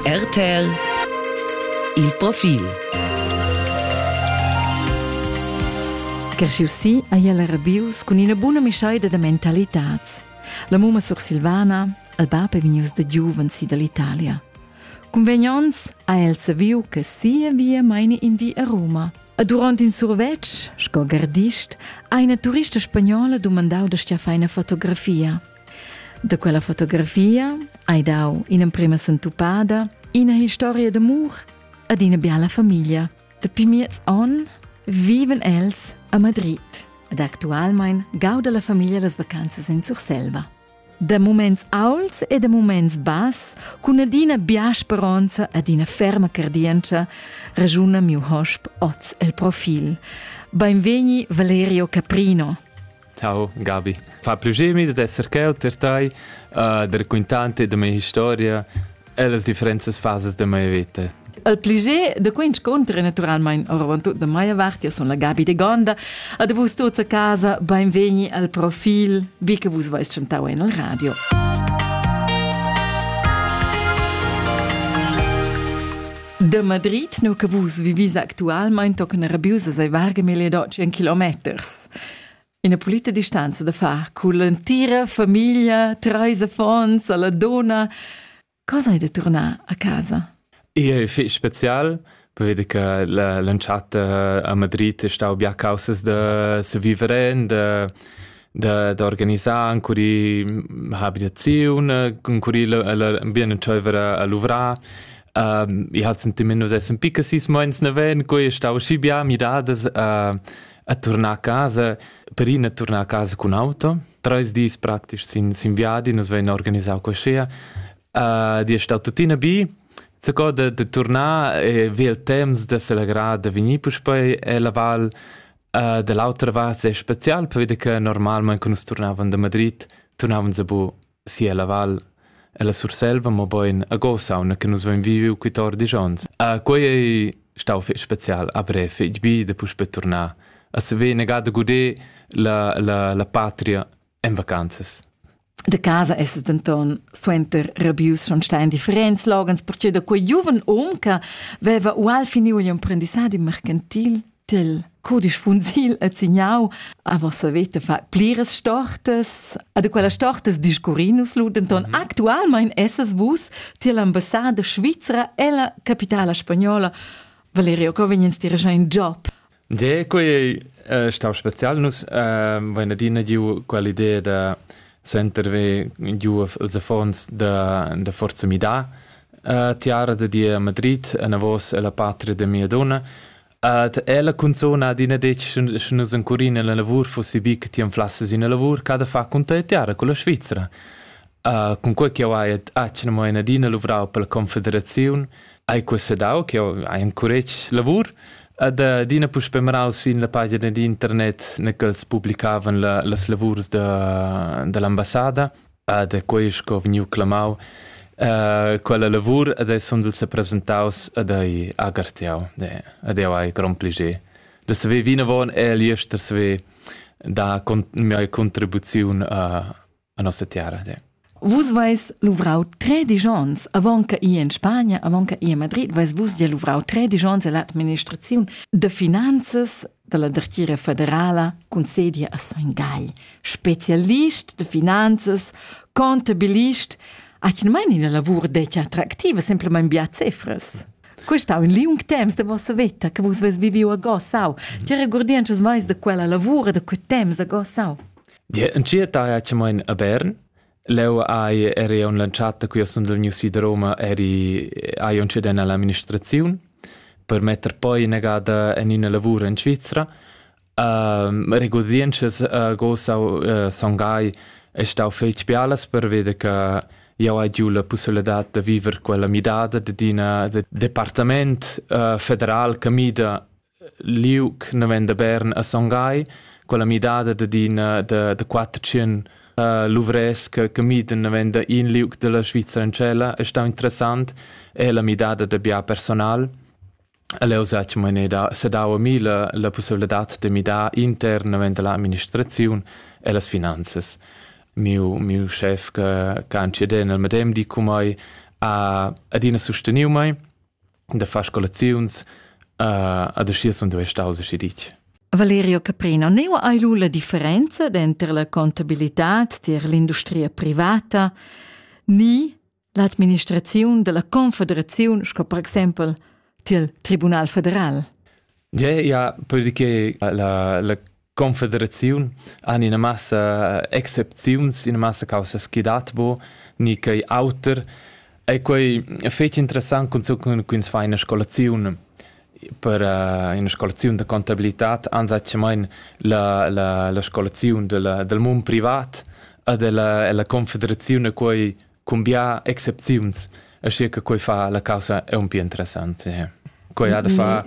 RTL Il profil Kerschiu si ei el rebius cun ina buna mischeida da mentalitads. La mumma sursilvana, il bab è vegnius da giuven si dall'Italia. Convegnons ha el saviu che sia via meine in di a Roma. E durant in survetsch, sco gardist, ha una turista spagnola dumandau da stia fai una fotografia – Da quella fotografia hai dau in'emprema sentupada, ina historia d'amur ad ina biala famiglia. Dapi miez onn viven els a Madrid ed actualmein gauda la famiglia las vacanzas in Surselva. Da muments auls e da muments bass, cun adina bia speronza ad ina ferma cardientscha, ragiuna miu hosp oz el profil. Beinvegni Valerio Caprino, Ciao Gabi, fa più gemi da esser quel per tai, uh, da raccontarti da mia historia e las differentas fases da mia vita. Il pliger da quei incontro è naturalmente oravantut da Maia Vart, io sono la Gabi de Gonda. Ad vus tuts a casa, benvegni al profil, vi che vus vais chantau en il radio. Da Madrid, no che vus vivis actualmente tocca una rabiusa sei varga mille docci in kilometers. Ina pulita distanza da far cun l'entira famiglia, treis affons, alla donna. Cosa hai da tornar a casa? È fich special, vedi che l'entschatta a Madrid è stau bia causas da se vivere, da da, da organizar ancora habitaziun, ancora bien entscheiver a luvrar. Um, ich hatte sentiment, dass es ein bisschen meins neven, quei stau schi bia midadas uh, a turnar a casa, per ina turnar a casa cun auto. Treis dis praktisch sin, sin viadi, nus vein organisau quaschea. Uh, di è stato tuttina bi, Zaco de, de tornar e vi il temps de celebrar de venir puspei e la val uh, dell'altra vart è special per vede che normalmente quando tornavan da Madrid tornavan zabu Sia la val. Ella Surselva, mobein a Gosauna che nus vein viviu quittor disch onns. Ah, quei ei stau fetg special a Bref, fetg bi da puspei turnar. A se ve negada gudé la, la, la patria en vacanzas. De casa es denton suenter rabius schon stein differents loghens, perche da quei giuven um che veva ual finiu gli imprendissadi mercantil Til cudisch funsil et signau aber se vete fa plires stortes a de quella stortes discurinus lu denton mhm. actualmein esses vus tier l'ambassade svizra e la capitala spagnola Valerio Covignens dirigea in job De quei eh, stau special nus eh, vain adina giu quell'idea da senterve giu els affons da da forza mida eh, tiara de dia Madrid a navos e la patria de mia donna Ed ella cunzun adina detg sche nus encurin ella lavur fussi bi che ti anflasses ina lavur che ha da far cun tia tiara con la Svizra. Uh, cun quei che jau hai atgna mo in adina luvrau per la confederaziun, hai questa dau che jau hai encuretg lavur ed adina puspè marau sin la pagina d'internet ne ch'els publicavan la, las lavurs da, dall'ambassada Ed è quei sco vegniu clamau uh, quella lavur ed ei sundel sepresentaus ed ei agartiau. Ed jau hai grond plascher da saver vinavon e liester saver dar con mia contribuziun uh, a nossa terra. Ja. Vus vais luvrau tre digions, avant che i in Spagna, avant che i a Madrid, vais vus ja luvrau tre digions all'administraziun de finanzas dalla dertgira federala concedi a Son Gai, specialist de finanzas, contabilist, atgnamain ina lavur detg attractiva, semplamain bia cefras. Questo ha un liung temps de vossa veta che vus ves viviu a Gossau. Ti regordi anches mais de quella lavura, de quei temps a Gossau? Dir, en cia taia ce mein a Bern, Leu hai eri aunc lantschat da quia sund vegnius vi da Roma eri hai aunc cedent all'amministraziun per metter poi inagada en ina lavur en Svizra. Uh, regurdientschas uh, go sau uh, Son Gai è stau fetg bialas pervede che jau hai giu la pussibilità da viver quella midada d'ina departament uh, federal che mida liug naven da Bern a Son Gai, quella midada d'adina da, da quatter tschien uh, luvrès che, che miden naven da in liug della Svizzera in cella è stau interessant è la midada da bia personal Leo zatg meine da sedau mi la, la possibilità de midar intern naven dalla amministrazione e las finanzas. Miu, miu chef che, che anci den al medem di cu mai ha adina sosteniu mai da far scolaziuns uh, ad aschi sun duei staus aschi ditg. Valerio Caprino, neu hai lu la differenza denter la contabilitad tier l'industria privata ni l'administraziun della confederaziun sco per exempel tiel Tribunal federal. Ja, ja, perché la, la Confederaziun han ina massa excepziuns, ina massa caussas chi dat bo, ni quei auter. E quei fetg interessant cunzunt cun ins fa ina scolaziun per uh, ina scolaziun da contabilitad ansatgemain la, la, la scolaziun della, del mund privat e della, della confederaziun e quei cun bia excepziuns, aschia che quei fa la caussa aunc interessante. Quei ha da far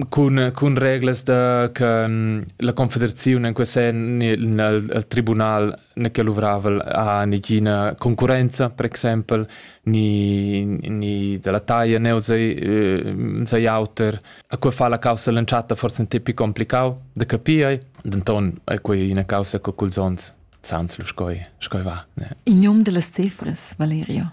cun, cun reglas da, che la confederazione in quel sen nel tribunal ne che luvravel ha negina concurenza, per exempel, ni, ni della taglia ne sei auter. A quei fa la caussa l'entschatta forse un tipi complicau da capire, denton è quei una causa che culs ons sans lu scoi scoi va ne in num dellas cifras Valerio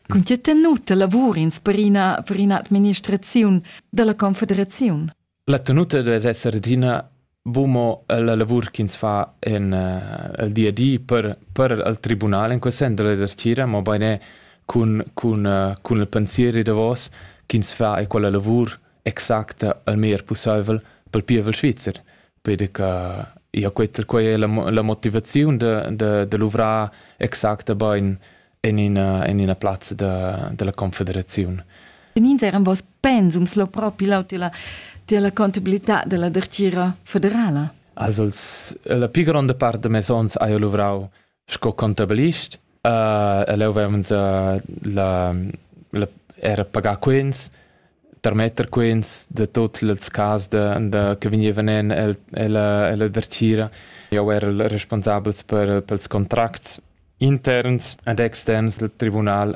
Con tge tenuta lavur ins per ina per ina administraziun dalla confederaziun? La tenuta deve esser adina bumo la lavur ch'ins fa en el di a di per per il tribunal in quel sen della dertira mo beine cun cun cun il pensier e davos ch'ins fa e quella lavur exacta al meglier pusseivel pel pievel svizzer Pedi che ja quetta quai è la, la motivaziun da, da, da luvrar exacta bain en ina, en ina plazza da, della confederazione. Benins eran vos pensums lo propi lau della, della contabilità della dertira federala? Also, la più grande parte de mes ons ha io luvrau Sco contabilist uh, el havevans uh, la, la, era pagar quens, tarmetter quens da tuts ils cas de, de, che vegnevan en el, ella, ella dertgira. Eu era il responsabels per, pels contracts interns ed externs del tribunal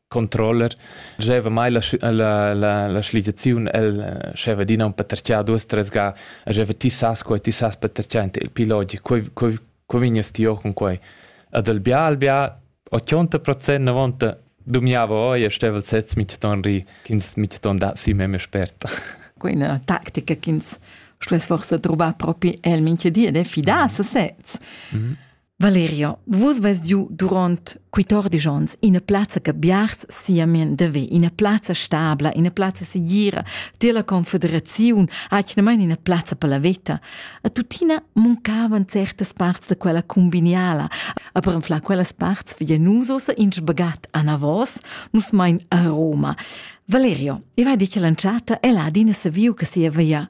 controller scheva mai la, la, la, la schligiaziun el eh, scheva dina un paterchia duas tres ga scheva ti sas quei ti sas paterchia il piloti quei quei quei vignes ti con quei ad al bia al bia 80% na vonta dumiava oi e stevel sez mit ton ri ch'ins mit ton da si meme sperta quella tactica ch'ins stuess forse trovar propi el minche di ed è fidà a sesez mm -hmm. Valerio, vus veis giu duront quittordisch onns ina plazza che biars siamen deve, ina plazza stabla, ina plazza segira, della confederaziun, atgnamain ina plazza per la veta. A tuttina muncavan certas parts da quella cumbiniala, a per enflar quellas parts via nus ossa in sbagat a Navos, nus mein a Roma. Valerio, io hai dit che l'entschatta è là adina saviu che sia via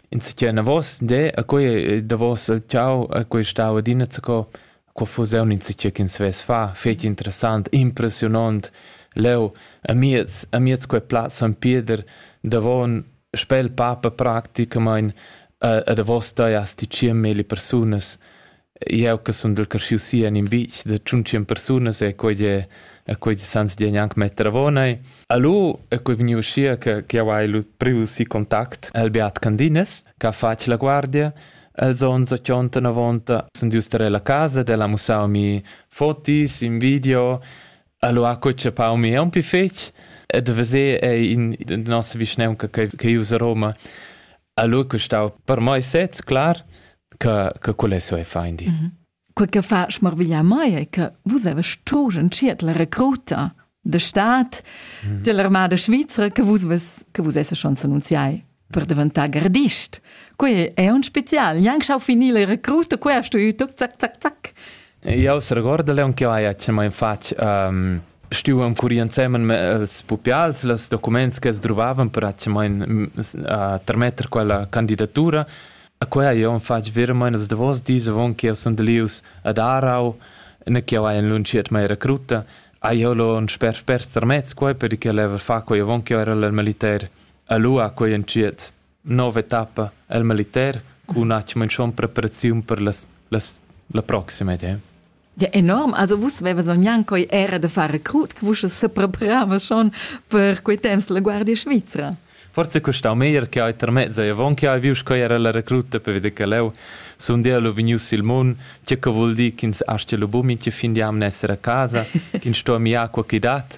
insicchia enavos de a quei eh, davos il ciao a quei stau adina zaco qua fusiun insicchia ch'ins vess fa fetg interessant impressionant leu a miez a miez quei plaz San Pieder davon spel papa practicamain a, a davos da asti 100 persone Jeu che sun dil carschiu si en in vitg da tschuntsien persunas e quei è e quei sans di gnanc metter avonai. Allo è quei vegniu uschia che che jau hai lu priu si contact el Beat Candines che ha fatg la guardia Els on sa chionta na vonta sun dius tar la casa, del ha mussau mi fotis, in video, allo ha co chapau mi un pi fetg, e da vese è in nossa vischneunca che che usa Roma. Allora che stau per mai sez clar che che quelle so e feindi. Mm -hmm. Quel che fa schmarviglia mai è che vus avest turgen ciert la recruta de stat mm -hmm. dell'armada svizra che vus ves che vus esse schon annunziai per diventare gardist. Quei è un spezial. Gnanc schau finire recruta, quei hast du ü, zac, zac, zac, zac. Jau seregordel aunc aia che mein fatg ehm stuevan curir ensemen els pupials los documents che sdruvavan per che mein termetter quella candidatura. A quei hai jeu fatg veramein ils davos dis avon che jeu sun delius ad Aarau, ne che jeu hai enlunschiert mei recruta, hai jeu lo en sper spert termez quei per che leva far quei avon che jeu era il militer a Lua quei entschiet. nova etappa el militer cun atgna menschon preparaziun per las, las la proxima idea. Ja enorm, also vus veves gnanc coi era de far recrut, che vus sepreparavas schon per quei temps la Guardia Svizra. Forse costau meglier che hai termezzo e avon che hai vius coi era la recruta per vede che leu sun dia lu vegnius il mun, che che vul dir ch'ins astia lu bumin che fin diam ne essere a casa, ch'ins sto mi acqua chi dat,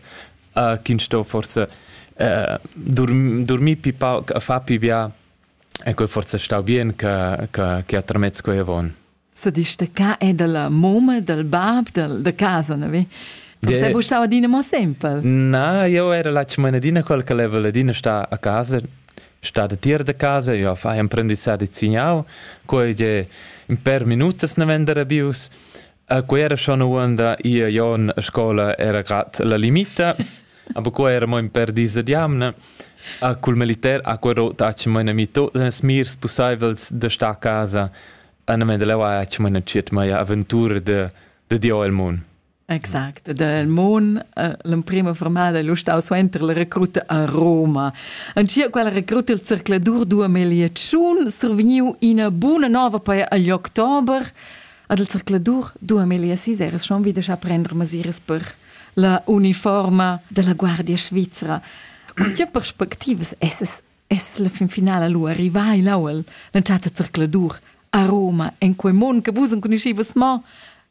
uh, ch'ins sto forse uh, dorm, dormir pi pauc a far pi bia e quei forse stau bien che che che atramez quei avon. Se dici de ca è della moma, del bab, del de casa, ne vi? Forse bu stau adina mo sempel. Na, io era la cimanadina quel che leva ladina sta a casa, sta de tier de casa, io fai un prendissage di signau, quei je in per minutas ne vendere bius. A quera schon uonda ia jon a scola era gat la limita, aber qua era mo in per dis ad jamna. A cul militer a quero taci mo ina mito ins mirs pussaivels da sta a casa. An me da leva taci mo ina ciet mai aventura de, de Dio el mun. Exact, del Mon, eh, l'emprima formada è stau suenter la recruta a Roma. Ancia quella recruta il cercladur 2000 survegniu ina buna nova poi agli october. Ad il zercladur dua melia siseres schon wieder scha prender masiras per la uniforma della Guardia Svizra. Cun tge perspectivas esses es la fin finala lu arrivai l'aual l'entschatta zercladur a Roma en quei mond che vus enconuschivas mo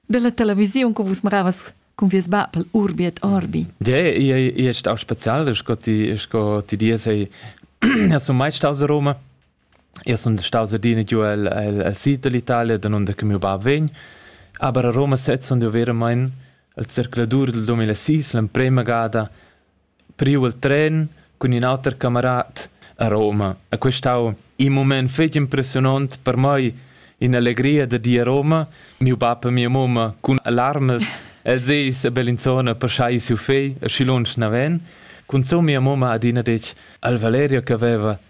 della televisiun che vus maravas con vies bab al Urbiet Orbi. Ja, ich, ich, ich auch speziell, sco ti, sco ti dir sei, ja so mai staus a Roma. Io sun staus adina giu el, el, el sid dall'Italia, danunder che miu bab vegn, aber a Roma sez sun jeu veramein il zercladur del 2006 l'emprema gada priu il tren cun in auter camarat a Roma e quest ha stau in mument fetg impressionont per mei, in'allegria da dir a Roma. Miu bab e mia mumma cun alarmas, els eis a Bellinzona per schai siu fegl, e schi lunsch naven. Cunzun mia mumma ha adina detg al Valerio che veva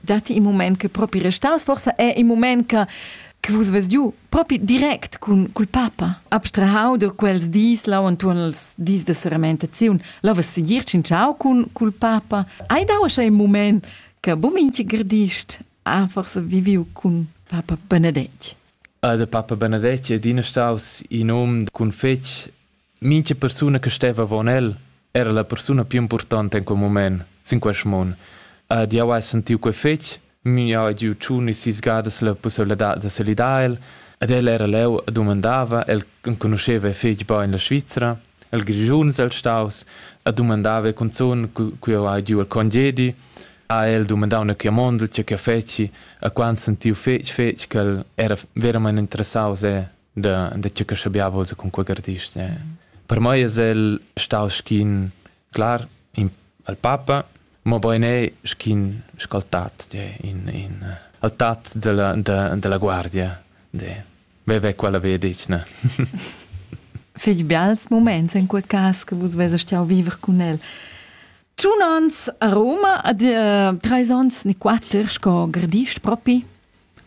datti in mument che propi restas, forsa è in mument che che vus vess giu propi direct cun cul papa abstrahau da quels dis lau entuorn els dis de seramentaziun la vess segir tschintschau cun cul papa hai dau schon ein moment che bominci gradist ha forse viviu cun papa Benedetg Ah, der Papa Benedetg è din staus in um cun fetg Mincha persuna che steva avon el era la persuna più importanta in quel mument sin quest mund. Ed jau hai sentiu quei fetg, miu jau hai giu tschun e sis gadas la pusseiladad da salidar el, ed el era leu e dumandava, el enconuscheva fetg bein la Svizra, el Grischuns el staus, e dumandava cunzun cu jau hai giu il congedi, ha el dumandau una chiamondel, tge che feci, e quando sentiu fetg, fetg che el era veramente interessaus e da, da tgeu che schabiava ussa con quei artist. Eh. Per mei es el stau schin clar in, al papa, ma bein è schin scaltat in, in eh, altat della, de, della guardia. De. Veve quella vedic, ne? Fig bials moments in quei cas che vus vese stiau viver con el. Tschun ans a Roma, ad uh, treis ons ni quatter, sco gradist propi?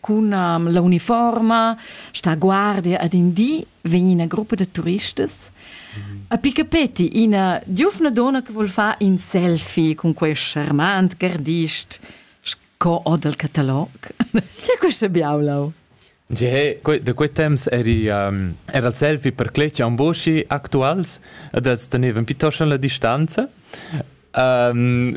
cun um, l'uniforma, sta guardia ad in di, vegn ina gruppa da turistas. Mm. A picapetti ina giufna donna che vuol far in selfie con questo charmant gardist sco o del catalog. Che questo biaulau? Ge, da quei temps eri, um, era il selfie per cletga un boschi actuals, e das tenevan piuttosto la distanza. Um,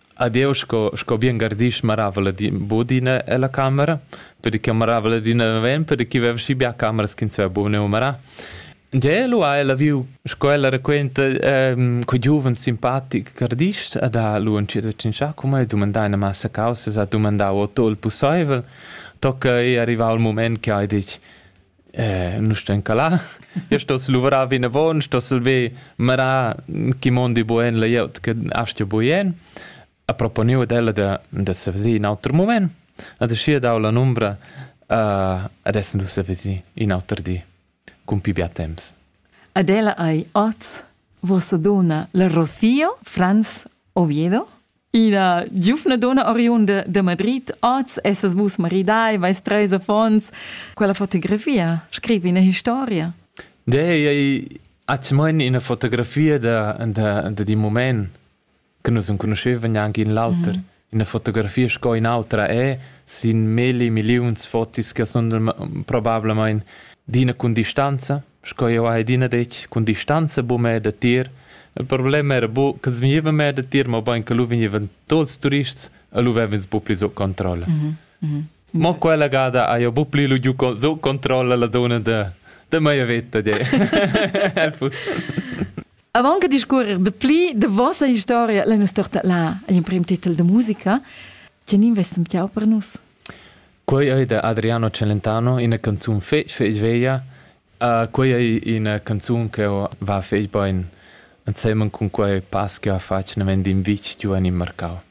Adeu sco, sco bien gardisch maravel ed bod ina ella camera, per che maravel adina naven, per che veva schi bia cameras ch'ins veva buca neu marar. Gie, lu ha ella viu, sco ella raquenta, ehm, quei giuven simpatic gardisch ed ha lu entschiet a tschintschar cun mei, dumandà ina massa causas, ha dumandau o tot il pusseivel, tocca ei arrivau il mument che ha detg: nu stan ca là. Io stoss luvrar vinavon, stoss ver marar chi mondi buen layout che astgia buien. Ha proponiu ad ella da, da se vesir in auter moment. Ad schi dau la numbra uh, adesso nu se vesir in auter di, cun pi bia temps. Ad ella ei oz vossa donna la Rocío Franz Oviedo? Ina giuvna donna oriunda de Madrid, oz essas vus maridai, vais treis affons. Quella fotografia, scrivi ina historia. De, ei hat mein ina fotografia da, da, da di moment che nus non conoscevan neanche in l'auter. Mm -hmm. Ina fotografia sco in autra è, sin milli miliuns fotis che sono probabilmente d'ina con distanza. sco jeu hai adina detg, cun distanza buca meir da tier. Il problem era bu ch'els vegnevan meir da tier, mobein che lu vegnevan tuts turists e lu vev'ins bu pli sut controlla. Mm -hmm. Mo quella gada ha jeu bu pli lu giu sut controlla la donna da, da meia veta de. Avant che discorrer de pli de vossa historia, la nostra là, ein prim titel de musica, che ni investum tiau per nus? Quei ei da Adriano Celentano ina canzun fetg fetg veglia. Uh, quei ei ina canzun che va fetg bein ensemen cun quei pass che ha fatg naven d'in vitg giu en il marcau.